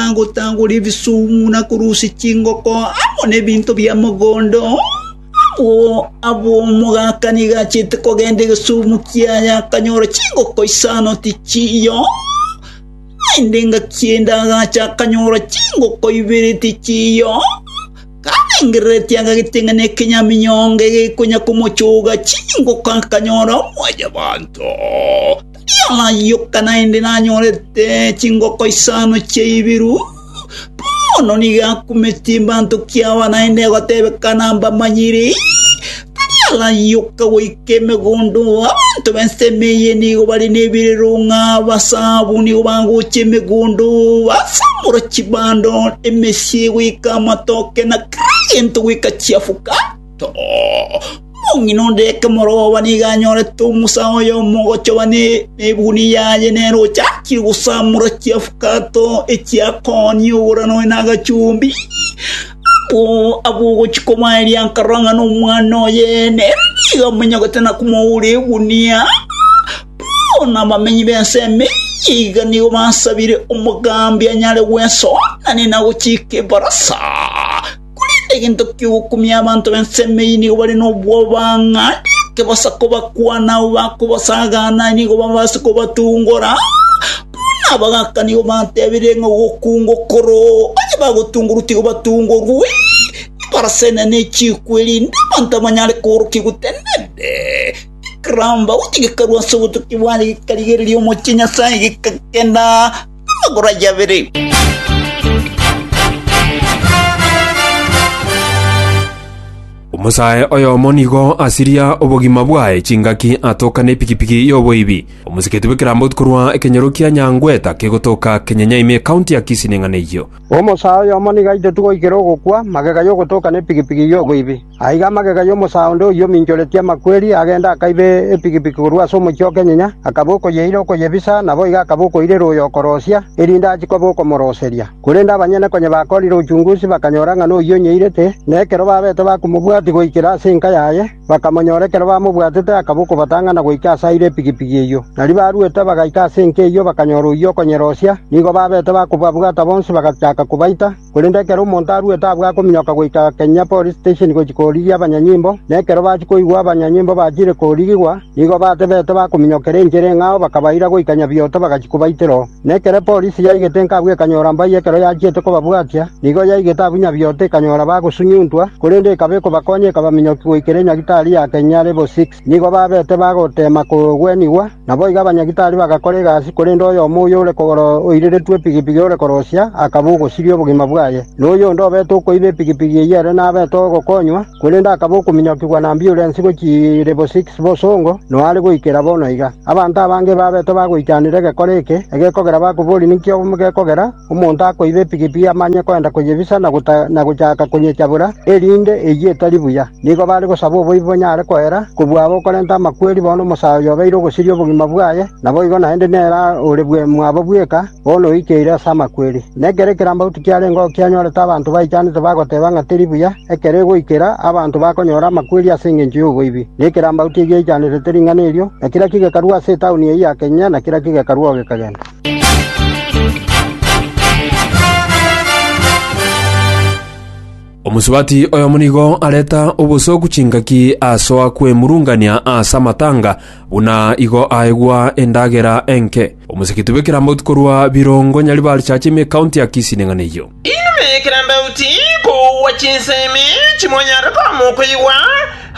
agotagora ebisoomu na korusia chingoko amo nebinto bia mogondo. Abwo abwo omogaka nigo achiete kogenda egesoomu kiaye akanyora chingoko isano tichiiyo. Naende engaki ende agacha akanyora chingoko ibere tichiiyo. Karengereretie agageteng'ena ekenyaminyongo egekonya komochoga chingoko akanyora mwanyabanto. Yayoka naende nanyorete chingoko isano chi'ebiru. Bono nigo akumeti mbanto kiabo naende egotebeka nambamanyiri. Tari arayoka goika emegondo, abanto b'ensemo eye nigo bare nebirerong'a, abasabu nigo bagocha emegondo, basamora chibando, emesie goika amatoke na kera gento goika chiafuka. Omong'ina onde ekemorooba nigo anyorete omosa oye omogochoba nebuni yaye, nere ochakire gosamura chiafukato echiakooni ogoro nonya nagachumbi. Abwo ogochia kobaeria akarora ng'a nomwana oye, nere nigo amonyogete na komoura egunia. Bono abamenyi b'ense eyio iga nigo basabire omogambi anyare gwesoonia na gochika ebarasa. Korende egento ki'ogokumia abanto b'ensemo eyio nigo bare nobwoba, ng'a ariake bosa kobakwana abwo bakobasagaana nigo babaase kobatungora, buna abagaaka nigo batebirie ng'a ogokunga okoro, onye bagotungorwa tiga batungorwe, ebarasa enene echiikwe, erinde abanto abanyare koorokia gotenenete. Ekeramba, gotyo gekarwa ase obotukia bwaye gekarigereria omochie Nyasaye, gekagenda. Magoro ayio abere. Omosae oyomo nigo asiria obogima bwaye chingaki atoka nepikipiki y'oboibi. Omosiketi bw'ekerambotu korwa ekenyoro kia Nyangweta kegotoka Kenyenyaimi ekaunti ya Kisii neng'ana eyio. Omosae oyomo nigo aitotigwe goikera ogokwa magega y'ogotoka nepikipiki y'oboibi. Aiga amagega y'omosaa onde oyio ominchoretie amakweri, agenda akaiba epigipigi korwa ase omochie o kenyenya, akaba okoyeira okoyebisa, naboigo akaba okoirera oyo okorosia, erinde achie koba okomoroseria. Korende abanyene konya bakorire ochungusi, bakanyora ng'a noyio onyeirete, na ekero babete bakomobwatia goikera ase enka yaye, bakamonyora ekero bamobwatete akaba okobatang'ana goika ase aire epigipigi eyio. Nario baruete bagaika ase enka eyio bakanyora oyio okonyerosia, nigo babete bakobabwata bonsi bagachaka kobaita, Korende ekero omonto aruete abwo akominyoka goika kenya police station gochia korigia abanyanyimbo, na ekero bachia koigwa abanyanyimbo bachire korigigwa, nigo batebete bakominyokera enchera eng'ao bakabaira goika Nyabioto bagachia kobaitera oo. Na ekero epolisi yaigete inka abwo ekanyora mbayio ekero yachiete kobabwatia, nigo yaigete abwo Nyabioto ekanyora bagosunyuntwa, korende ekaba ekobakonya ekabaminyokia goikera enyagitari ya kenya level six. Nigo babete bagoteema kogwenigwa, naboigo abanyagitari bagakora egasi, korende oyomo oyore kogoro oiriretwe epigipigi ore korosia akaba ogosiria obogima bwaye, na oyonde obete okoiba epigipigi eyio ere nabete ogokonywa, korende akaba okominyokigwa na ambiurensi gochia lebo six bosongo, noare goikera bono iga. Abanto abange babete bagoichanera egekora eke, egekogera bakoboria ninki gekogera, Omonto akoiba epigipigi amanye koenda koyebisa na gochaka konyechabora, erinde eyio etari buya. Nigo bare gosaba oboibi bonyare koera, kobua aba okorenta amakweri bono omosae oyo obeire ogosiria obogima bwaye, naboigo naende nere ore mwabo bweka, bono oikeire ase amakweri. Na ekero ekerambauti kiarenge oo kianyorete abanto baichanete bagoteba ng'a teri buya, ekero egoikera, abanto bakonyora amakweri ase engencho y'oboibi, na ekerambauti egiaichanerete ring'ana erio, na kera ki gekarua ase etauni eyio ya Kenya, na kera ki gekarua oo gekagenda. Omosubati oyomo nigo areta obosooku chingaki asoa kwemurungania ase amatanga, buna igo aegwa endagera enke. Omosigiti bw'ekerambotu korwa Birongo Nyaribari Church ime County ya Kisii ning'ana eyio. Inwe ekerambauti, kogwa chinsemi chimonyare koamoka igwa,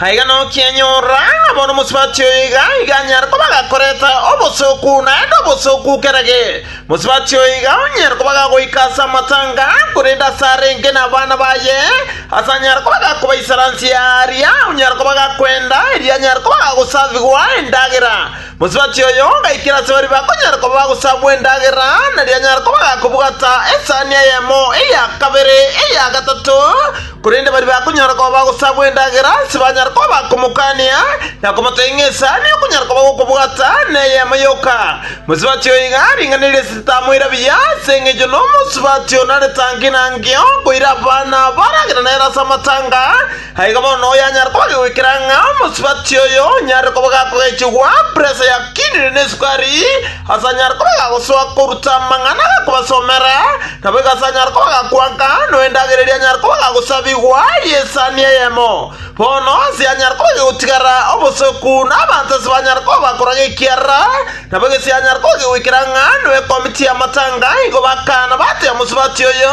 aiga nokianyorora ng'abo nomosubati oyo iga iga anyare koba gakorete obosooku naende obosooku kerage. Mosubati oyo iga onyare koba gagoika ase amatanga, korende ase arenge nabana baye, ase anyare koba gakobaisaransia aaria onyare koba gakwenda, erio anyare koba gagosavigwa endagera. Mosubati oyo ngaikera ase baria bakonyara koba bagosabwa endagera, nario anyare koba agakobwata esani eyemo, eya kabere, eya gatato, korende baria bakonyara koba bagosabwa endagera ase banyare koba bakomokania, na komotebia ng'a esani okonyara koba gokobwata neyemo yoka. Mosubati oyo iga aringanirie ase ritamoira buya, ase engencho nomosubati onare tangi na ngeo, koira abana baragera nere ase amatanga, Na igo bono oyanyare koba agegoikera ng'a omosubati oyo onyare koba gakogechigwa presa ya kinini na esukari, asanyare koba agagosoa koruta amang'ana agakobasomera, naboigo asanyare koba agakwanka, noyo endagera eria anyare koba agagosabigwa y'esani eyemo. Bono ense yanyare koba egegotigara obosoku, na abanto ase banyare koba bakoraga ekiara, naboigo ense yanyare koba egegoikera ng'a noyo ekomiti y'amatanga, igo bakaana batebia omosubati oyo,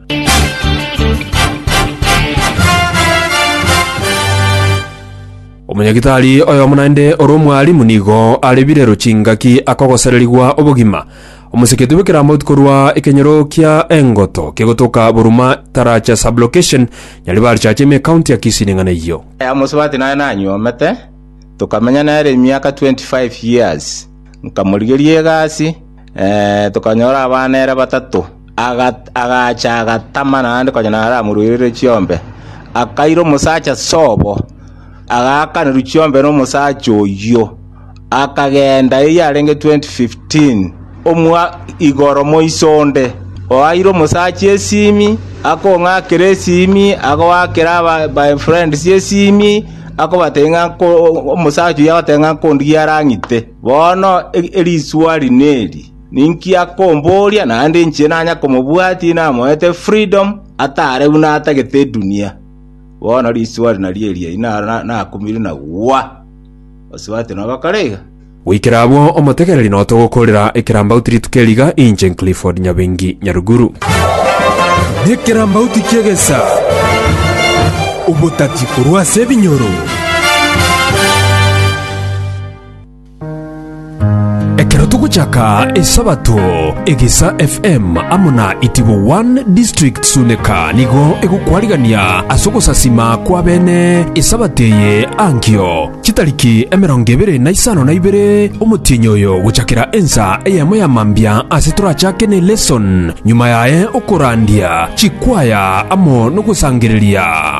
Omonyagitari oyomo naende ore omwarimu nigo arebire rochingaki akogosererigwa obogima. Omoseketi bw'ekeramauti korwa ekenyoro kia Engoto kegotoka Buruma taracha sublocation Nyaribarichache ime ekaunti ya Kisii neng'ana eyio. Aya mosubati naye nanyuomete, tokamenya nere emiaka 25 years. Nkamorigeria egasi, Tokanyora abana ere batato. Agacha agatama naende konya naramoruerere chiombe. Akaira omosacha sobo, agaakanerwa chiombe nomosacha oyio, akagenda eyio arenge 2015 omwa igoro moiso onde oaire omosacha esimi, akong'akera esimi, agoakera aba my friends esimi, akobatebia ng'a omosacha oyio agotenga ng'a nkondigia arang'ite. “Bono eriswali neri, Ninki akomboria, naende inche nanye komobwatia inamoete freedom, ataare buna atagete edunia?” Bono riswali nario eria nakumire na gwa. Osubate nogokora iga? Goikera abwo omotegereri nao togokoorera ekerambauti rituko eri iga, inche Clifford Nyabengi Nyaruguru. Nekerambauti ki'egesa, obotati korwa ase ebinyoro. Ekero togochaka Esabato, Egesa FM amo na Itibo One District Suneka nigo egokwarigania ase ogosasima kw'abene Esabato eye ankio chitariki emerongo ebere na isano na ibere omotienyi oyo gochakera ensa eyemo ya mambia ase torachake ne lesson, nyuma yaye okorandia chikwaya amo nogosangereria.